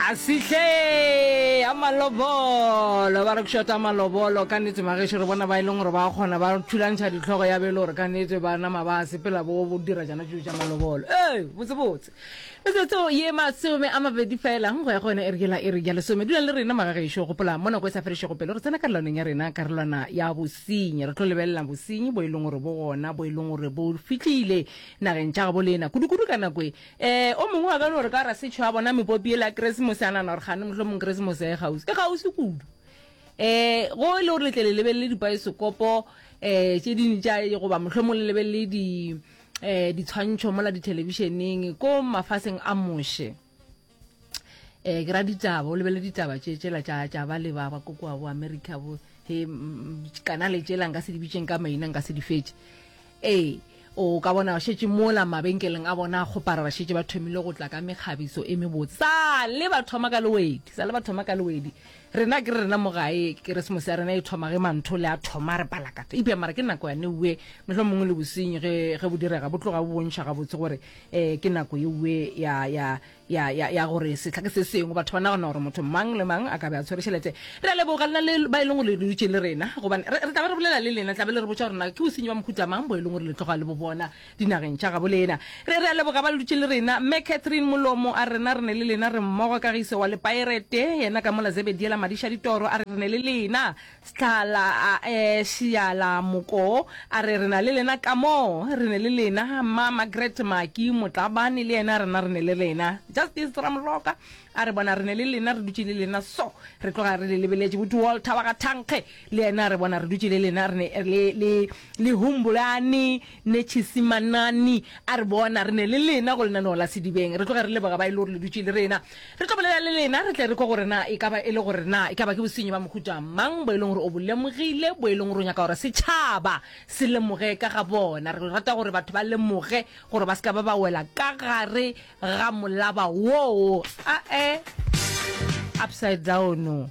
a sihle a malobolo ba re kušota malobolo ka nete magešo re bona ba e leng gore ba kgona ba thulantšha ditlhogo ya bele gore ka nete ba nama ba sepela bo bo dira jana tšo tša malobolo ee botsebotse metsotso ye masome a mabedi felang go ya go yone e re kela e re ja lesome dula le rena magagešo gopola mo nako e sa fedišego pele re tsena karolwaneng ya rena karolwana ya bosenyi re tlo lebelela bosenyi bo e leng gore bo gona bo e leng gore bo fitlile nageng tša gabo lena kudu-kudu ka nako e Ee, o mongwe wa ka no re ka rasetšho a bona mepopi ele ya Keresemose a nana gore gane mohlomong Keresemose ya e gausi. E gausi kudu. Ee, go e le gore letle le lebelele dipaesekopo um tše ding tša goba mohlomong le lebelele di um ditshwantšho mola dithelebišeneng ko mafaseng a moše. Um ke ra ditaba, o lebelele ditaba tše tšela tša tša ba le ba ba ko kua bo America bo he kana le tšela nka se di bitšeng ka maina nka se di fetše. Ee, o ka bona ba šetše mola mabenkeleng a bona a kgopara, ba šetše ba thomile go tla ka mekgabiso e mebotse. Sa le ba thoma ka lewedi, sa le ba thoma ka lewedi. Rena ke re rena mo gae, Keresemose ya rena e thoma ge manthole a thoma, re palakatha. Eupša mara ke nako yane ue, mohlomongwe le bosenyi ge, ge bo direga, bo tloga bo bontšha gabotse gore, ee, ke nako eue ya, ya, ya, ya, ya gore sehla ke se sengwe batho ba nagana gore motho mang le mang a ka be a tshwere tšhelete re a leboga lena le ba e leng gore le dutše le rena gobane re tla ba re bolela le lena tlabe le re botsa gore na ke bosenyi ba mohuta mang bo e leng gore le tloga le bo bona dinageng tša gabo lena re re a leboga ba le dutše le rena mme catherine molomo a rena re ne le lena re mmogo kagiso wa lepirate yena ka mola zebediela madiša ditoro a re re ne le lena Stlala a e šiala moko, a re, Re na le lena kamoo, re ne le lena, Mma Margaret Maki Motlabane le yena, rena re ne le rena. Justice Ramoroka a re, Bona, re ne le lena, re dutše le lena so, re tloga re le lebeletše. Buti Walter wa ga Thankge le yena a re, Bona, re dutše le lena, re ne le, le, le Humbolane. Netšhisi Manani a re bona re ne le lena go lenaneo la Sedibeng. Re tloge re leboga ba e le gore le dutše le rena. Re tlo bolela le lena, re tle re kwe gore na e ka ba e le gore na e ka ba ke bosenyi ba mohuta mang bo e leng gore o bo lemogile, bo e leng gore o nyaka gore setšhaba se lemoge ka ga bona. Re rata gore batho ba lemoge gore ba se ka ba ba wela ka gare ga molaba woo. A-e, upside down.